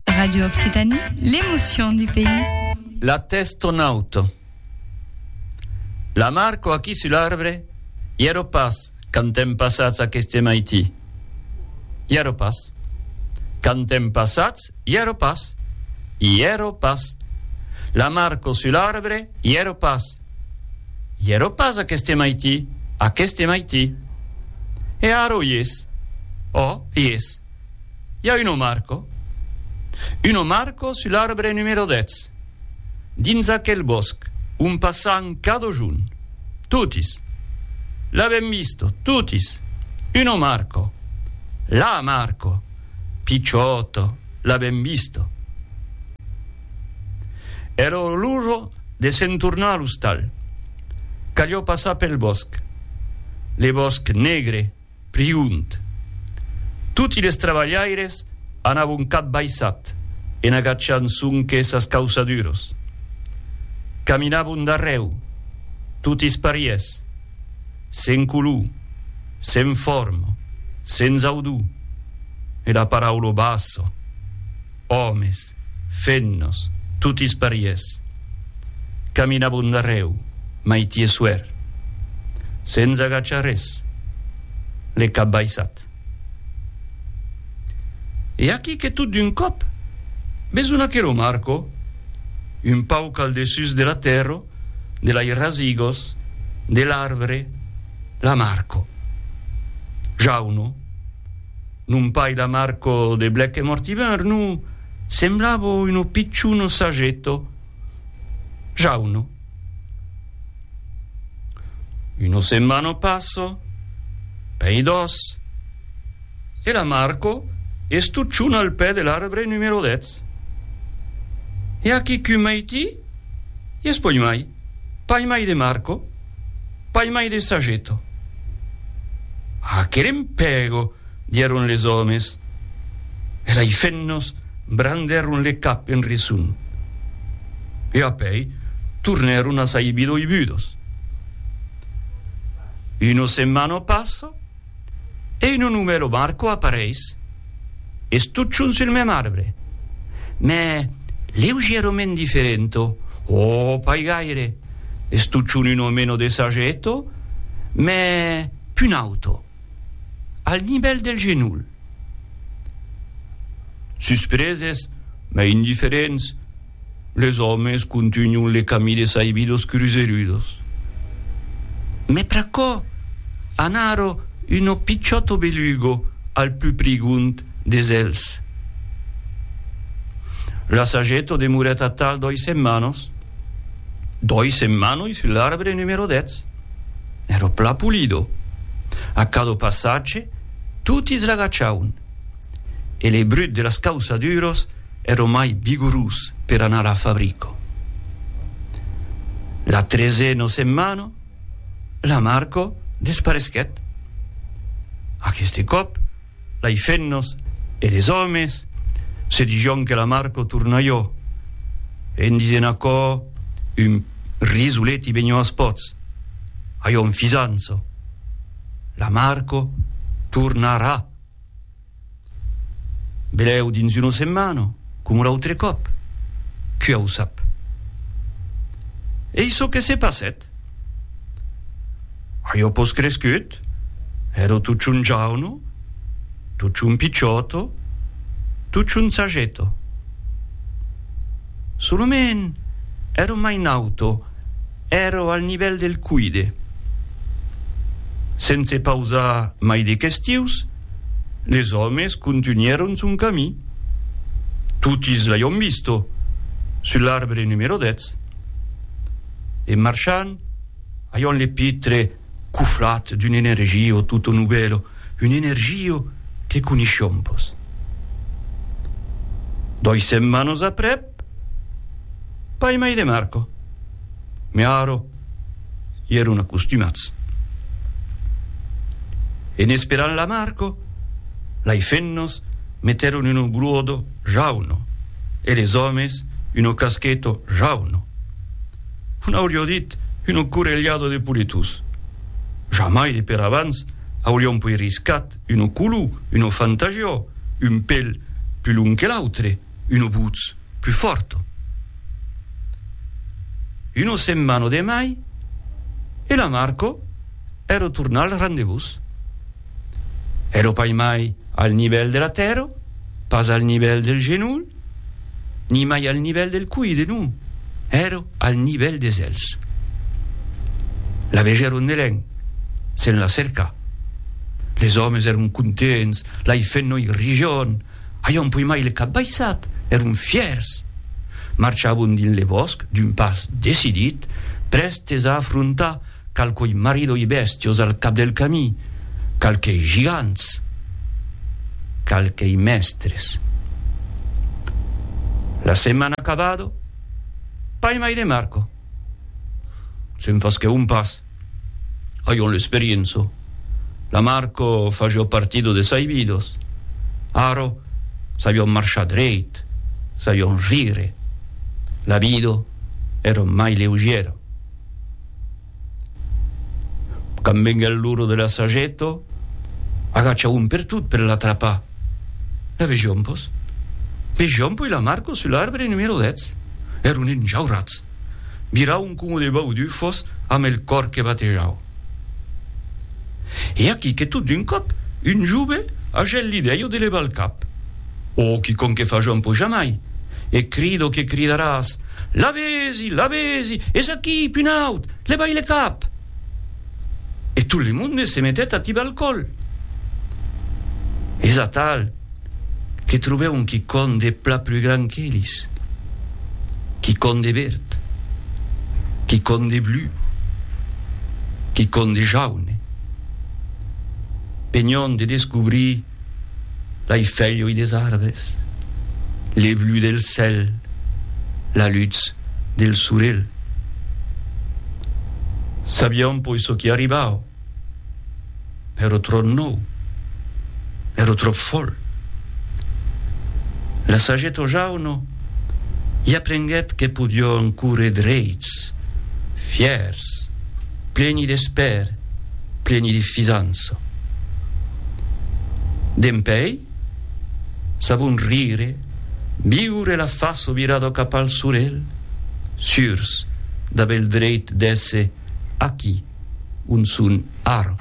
Radio Occitanie, l'émotion du pays. La tèst en aut. La marco aquí sul arbre, i èro pas quand èm passats aqueste maití. I èro pas. Quand èm passats, i èro pas. I èro pas. La marco sul arbre, i èro pas. I èro pas aqueste maití, aqueste maití. E ara o i es? O, i es. i a un omarco. Un omarco sul arbre numero 10, dins aquel bòsc ont passan cada junh. Totis. L'avèm visto, totis. Un omarco. L'amarco. Picciòto, l'avèm visto. Èra l'ora de se'n tornar a l'ostal. Calió passar pel bòsc. Le bòsc negre. Priunt. Toti les trabalhaires anavon cap baissat en agachant sonque sas causaduros. Caminavon darrèu, totis parièrs, sen color, sen forma, sens audor, e la paraula bassa. Òmes, fennos, totis parièrs. Caminabon darrèu, maiti e suèr. Sens agachar res, le cap baissat. E aquí que tot d'un còp, besonh aquerò Marco, un pauc al dessús de la tèrra, de lai rasigos, de l'arbre, la Marco. Jauno. Non pas la Marco de Blèc e Mortimer, non, semblava uno picciuno sagetto, jauno. Uno semmano passo, pei dos, e la Marco e stucciona al pè de l'arbre numero dètz. E a quicun mai ti? Ies poi mai. Pas mai de Marco, pas mai de Sageto. Ah, que lempego! dieron les òmes, e lei fennos brandèron le cap en reson, e apèi tornèron a sai bidoibudos. Uno se manò passo. e un onumelo marco apareis, es totjorn sul mem arbre, mè leugièrament diferento, o pas gaire, es totjorn un omeno de sageto, mè pun auto, al nivèl del genol. Suspreses, mè indiferents. Les òmes contunhon le camí de Saividos Cruzerudos. Mès pr'aquò, anaro uno pichòto belugo al pus prigond des elhs. L'assageto demorèt atal doi setmanos, doi setmanoi sus l'arbre numero dètz. Ero plan pulido. A cada passatge, toti sl'agachaun. E le brut de las causaduros Ero mai vigorós per anar a fabrico. La treseno setmano, la Marco desparesquèt. Aqueste còp, lei fennos e les òmes se dijon que la Marco tornaió en disent aquò un risoleti benhó as pòts, aiò un fisanço. La Marco tornarà! Belèu dins una setmana, coma l'autre còp, qui au sap. Ei çò que se passèt. Ajo pos crescut, èro tuchon jauno, tuchon pichòto, tuchon sageto. Solament èro mai nauto, èro al nivèl del cuide. Sense pausar mai de questius, Les òmes contunhèron son camí. Totis l'aion visto sus l'arbre numero 10. En marchant, aion le pitre coflat d'un energio tutto nubelo, un energio que coniscion pos. Doi setmanos aprèp, Pas mai de Marco. Mai ara i èron acostumats. En esperant la Marco, lei femnas metèron uno gruodo jauno e les òmes uno cascheto jauno. Un aurió dit uno correlhado de poletós. Jamai de per abans aurión poi riscat uno colú, uno fantagió, un pel pus long que l'autre. Uno butz plus forto. Uno semmano de mai e la Marco ero tornà al rendevús. Ero pai mai al nivèl de la tèrra, pas al nivèl del genolh, ni mai al nivèl del cuide, non, ero al nivèl des èlhs. La vegèron nelèn, se'n la cercà. Les òmes èron contents, l'ai fèt noi rijon. Aion puimai le cap baissat, èron fièrs! Marchavon dins le vòsc d'un pas decidit, prèstes a afrontar qualquoi maridoi bèstios al cap del camí, qualquei gigants, qualquei mèstres. La setmana acabado, paimai de Marco. Se'n faschèu un pas. Ajo l'esperienzo. La Marco fajo partido de sai vidos. Aro sajon marchar dreit, sajon rire. La vido èra mai leugiera. Quand venguèt l'ora de l'assageto, agachaon per tot per l'atrapar. La vejom, pos? Vejom poi la Marco sul arbre numero 10. Èron enjaurats. Mirau un cúmu de baudufos amb el còr que batejau. E aquí que tot d'un còp un jove a gèl l'idèia de levar el cap. Ò, quicòm que faja un pojamai! E crida o que cridaràs, Lavezi! Lavezi! Es aquí, punaut! Levai le cap! E tot le monde se metèt a tibar el còl. Es atal! que trobè un quicòm de pla plus grand qu'elis, quicòm de verd, quicòm de blu, quicòm de jaune, penhant de descobrir lei felhoi des arbres, le blu del cèl, la lutz del sorelh. Sabiam poi çò qui arribava. Ero trò nòu, ero trò fòl. La sageta o jauno i aprenguèt que podion córrer dreits, fièrs, pleni d'espèr, pleni de fisança. Dempèi, sabon rire, viure la faço virada cap al solelh, surs d'aver el dreit d'èsser aquí, On son ara?